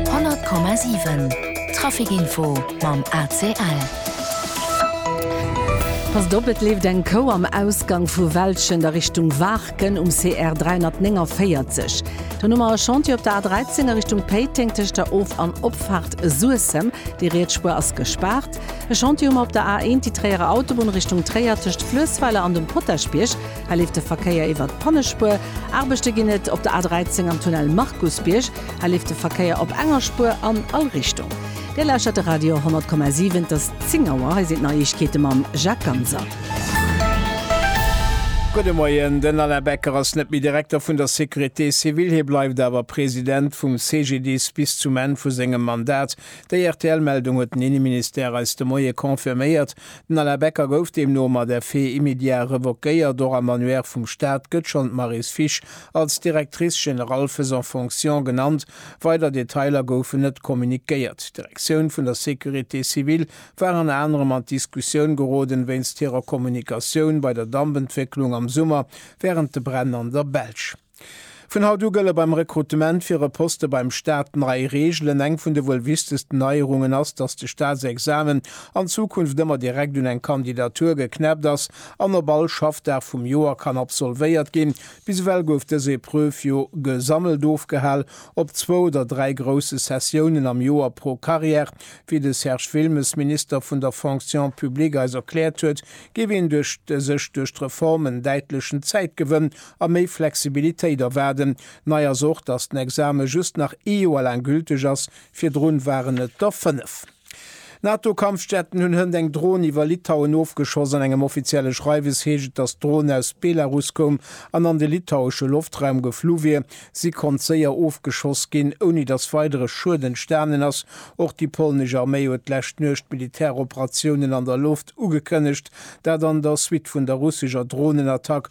100,7 Traficinfo mam ACL. Passt op, et leeft eng Kou am Ausgang vu Welschent a Richtung Waarken um CR 349. Dann hu mer e Chantier op der A 13 a Richtung Péiteng tëscht der Of an Opfaart Suessem. Déi riets Spuer ass gespaart. E Chantier hu mer op der A 1, déi Tréierer Autobunn Richtung Tréier tëscht Fluessweiler an dem Potaschbierg. Hei leeft de Verkéier iwwert d'Pannespuer. Aarbechte ginn et op der A 13 am Tunnel Markusbierg. Hei leeft de Verkéier op enger Spuer an all Richtung. Dir lauschtert de Radio 10,7. Et ass 10 Auer. Hei sinn d'Neiegkeete mam Jacques Ganser. Gudde Moien. Den Alain Becker ass net méi Direkter vun der Sécurité civile. Hie bleift awer President vum CGDIS bis zum Enn vu sengem Mandat. Déi RTL-Meldung huet den Inneministère eis de Moie confirméiert. Den Alain Becker gouf deemno mat effet immédiat revoquéiert. Och am Annuaire vum Staat gëtt schonn d'Maryse Fisch als Directrice générale faisant fonction genannt. Weider Detailer goufen net kommuniquéiert. D'Direktioun vun der Sécurité civile war ënner anerem an d'Diskussioun geroden, wéinst hirer Kommunikatioun bei der Dampentwécklung am Summer wärend de Bränn an der Belsch. Vun haut u gëlle beim Rekrutement fir e Poste beim Staat nei Reegelen. Eng vun de wuel wichtegsten Neierungen ass, datt de Staatsexamen an Zukunft ëmmer direkt un eng Kandidatur geknäppt ass an op all Schaffdag vum Joer kann absolvéiert ginn. Bis ewell gouf dës Epreuve jo gesammelt ofgehal op zwou oder dräi grousse Sessiounen am Joer pro Carrière. Wéi de Serge Wilmes, Minister vun der Fonction publique, eis erkläert huet, géif een duerch sech duerch d'Reform en däitlechen Zäitgewënn a méi Flexibilitéit erwaarden. Nei ass och, datt den Exame just nach ee Joer laang gülteg ass, virdrun waren et der fënnef. NATO-Kampfjetten hunn hënt eng Dron iwwer Litauen ofgeschoss. An engem offizielle Schreiwes heescht et, datt d'Dron aus Belarus koum an an de litauesche Loftraum geflu wier. Si konnt séier ofgeschoss ginn, ouni datt weidere Schued entstanen ass. Och déi polnesch Arméi huet d'lescht Nuecht Militäroperatiounen an der Loft ugekënnegt, dat an der Suite vun der russescher Dronenattack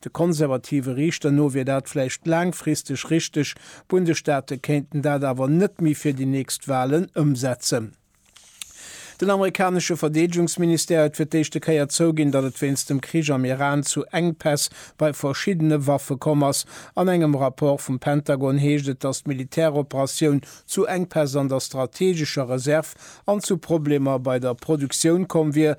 De konservative Riichter no wier dat vläicht laangfristeg richteg, d'Bundesstaate kéinten dat awer net méi fir déi nächst Walen ëmsetzen. Den amerikanesche Verdeedegungsministère huet fir d'éischte Kéier zouginn, datt et wéinst dem Krich am Iran zu Enkpäss bei verschiddene Waffe komm ass. An engem Rapport vum Pentagon heescht et, datt d'Militäroperatioun zu Enkpäss an der strateegescher Reserv an zu Problemer bei der Produktioun komm wier,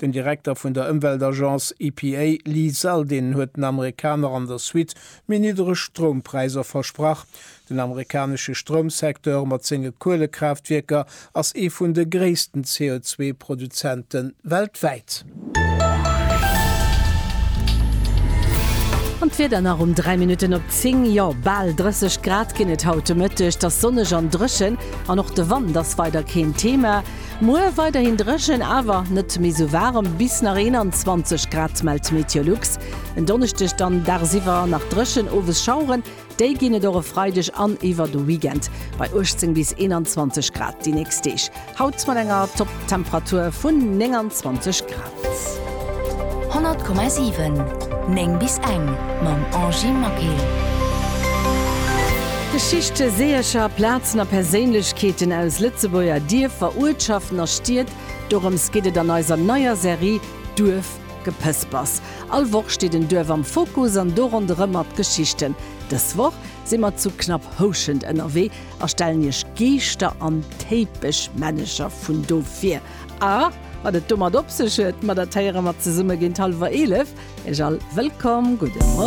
Den Direkter vun der Ëmweltagence EPA, Lee Zeldin, huet den Amerikaner an der Suite méi niddereg Stroumpräisser versprach. Den amerikanesche Stroumsecteur mat senge Kuelekraaftwierker ass ee vun de gréissten CO2-Produzente weltwäit. An d'Wieder nach um 3 Minutten op 10, jo bal 30 Grad ginn et haut de Mëtteg, 't ass sonneg an dréchen an och de Wand ass weider keen Thema. Muer weiderhin dréchen, awer net méi sou waarem, bis nach 21 Grad mellt d'Meteolux. En Donneschdeg dann dagsiwwer nach dréchen, owes Schaueren, déi ginn et och e Freideg an iwwer de Weekend bei 18 bis 21 Grad. Déi nächst Deeg haut mat enger Topptemperatur vun 29 Grad. 100,7 9 bis eng mam Angy Maquil. Geschichte, Seeërcher, Plazen a Perséinlechkeeten aus Lëtzebuerger Dierfer, Uertschaften a Stied, dorëms geet et an eiser neier Serie Duerfgepëspers. All Woch steet en Duerf am Fokus an do ronderëm mat d'Geschichten. Dës Woch si mer zu Knapphouschent ënnerwee a stellen Iech Geeschter an Téipeschmännecher vun do vir. A wat et domat op sech huet, ma dat héiere mer zesumme géint hallwer 11. Ech all wëllkomm. Gudde.